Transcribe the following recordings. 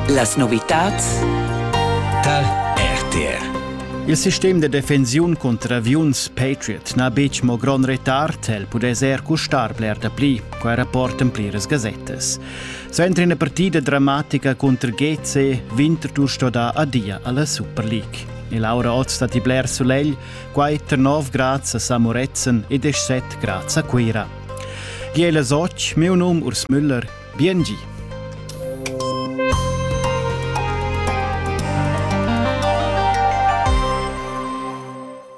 Las novitads tar RTR. Il sistem de defensiun contra aviuns Patriot n'ha betg mo grond retard, el pudess er custar bler dapli, quai rapportan pliras gasettas. Suenter ina partida dramatica contro GC, Winterthur sto dar adia alla Super League. E Laura oz stat i bler solegl, quai tar 9 grads a Samoretzen e 17 grads a Cuira. Giela Soc, meu num Urs Müller, Biengi!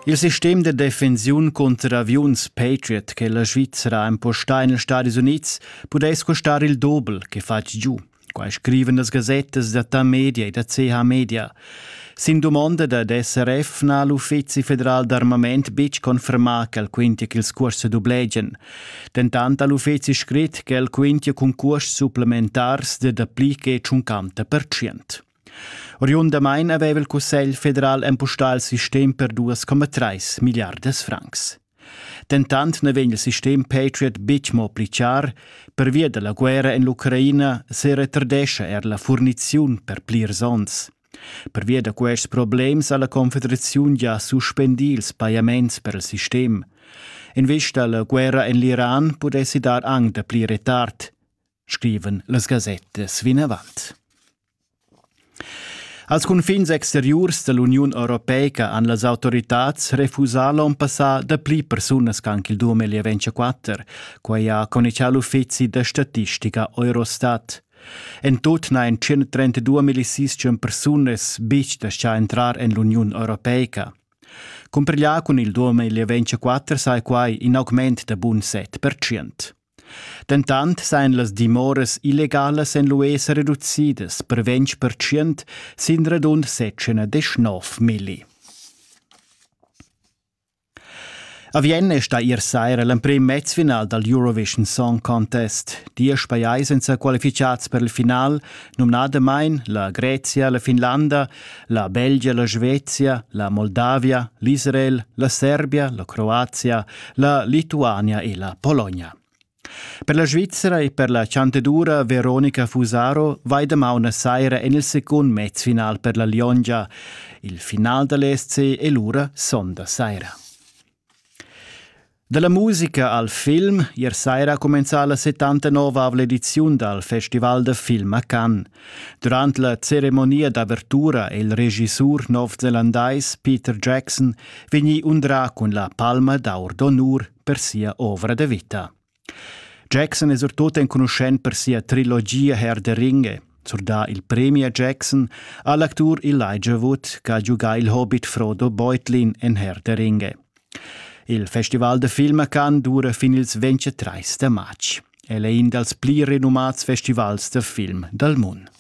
Il sistem de defensiun contro aviuns Patriot che la Svizzera impostà in Stati Units pudess costar il doble che fatg giu. Quai scriven las gasettas da Ta Media e da CH Media. Sin dumonda dad SRF n'ha l'Uffizi federal d'armament betg confermà ch'el quintia ch'ils cuors sa dublegian. Dentant ha l'uffizi scrit ch'el quintia cun cuors supplementars da dapli che 50 percent. Oriundamain aveva il Cussegl federal empustà il sistem per 2,3 milliardas francs. Dentant na vegn il sistem Patriot betg mo pli char, pervia da la guerra en l'Ucraina seretardescha er la furniziun per plirs onns. Pervia da quests problems ha la Confederaziun gia suspendì ils pajaments per il sistem. In vis da la guerra en l'Iran pudessi dar anc dapli retard. scrivan las gasettas vinavant. Als cunfins exteriurs dall'Uniun Europeica han las autoritads refusà l'on passà dapli persunas ch'anc il 2024, quai ha conichà l'uffizi da statistica Eurostat. En tut n'hain 132 milicistium persunas betg dascià entrar en l'Uniun Europeica. Cumpiglià cun il 2024 sai quai in augment da bun 7%. Dentant sajan las dimoras illegalas en l'UE sa reducidas per ventg pertschient sin radund sechschanedeschnov milli. A Vienna è stà ier saira l'emprim mezfinal dal Eurovision Song Contest. Diesch pajais èn sa qualificads per il final, numnadamain la Grezia, la Finlanda, La Belgia, la Svezia, la Moldavia, l'Israel, la Serbia, la Croazia, la Lituania e la Polonia. Per la Svizzera e per la chanteddura Veronica Fusaro vai damaun a saira en il secund mezfinal per la Liongia. Il final da l'SC è lura sonda saira. Dalla musica al film ier saira ha cumenzà la 79ava ediziun dal Festival da film a Cannes. Durant la ceremonia d'avertura è il regissur novzelandais Peter Jackson vegnì undrà cun la palma d'aur d'onur per sia ovra da vita. Jackson es surtut enconuschent per sia trilogia Herr der Ringe. Surdà il premi a Jackson ha l'actur Elijah Wood che ha giugà il hobbit Frodo Beutlin en Herr der Ringe. Il festival de film a Cannes dura fin ils 23 de març. El è in dals pli renumats festivals de film dal mondo.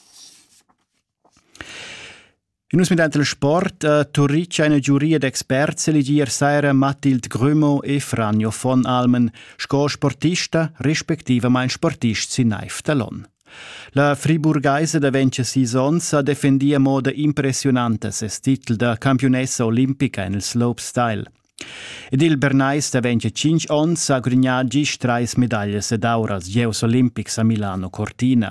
Nus midant il sport uh, turricha ina giuria d'experts elegier saira Mathilde Grümo e Franjo von Almen sco sportista respectivamain sportist sin Neif Talon. La friburgaisa da 26 onns ha defendia moda impressionanta ses titel da campiunessa olimpica en il slopestyle. Ed il Bernais da 25 onns ha grignà gist trais medaglias ed auras gieus olimpics a Milano Cortina.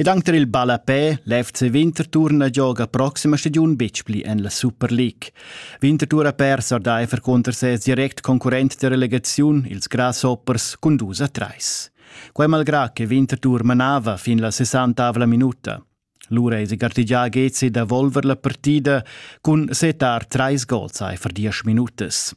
Ed anc tar il ballapè, l'FC Winterthur na gioga proxima stagiun betg pli en la Super League. Winterthur ha pers ordaifer cunter ses direct concurrent da relegaziun, ils Grasshoppers, cun dus a trais. Quai malgrà che Winterthur manava fin la sessantavla minuta. Lura èsi gartegià Gezi da volver la partida cun setar trais gols aifer diesch minutas.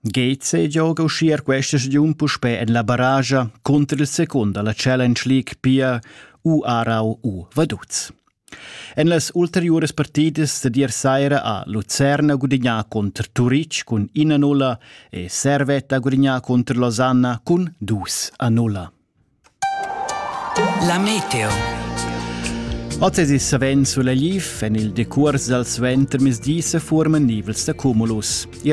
Geze gioga uschia questa stagiun puspè en la baraja cunter il secund da la Challenge League pia u Aarau u Vaduz. En las ulteriuras partidas da dir saira ha Lucerna gudignà contr Turic cun 1-0 e Servette ha gudignà contr Losanna cun 2-0. La meteo. Oz es il savens sulla liv en il decurs dal suentermezdi sa furman nivels da cumulus. I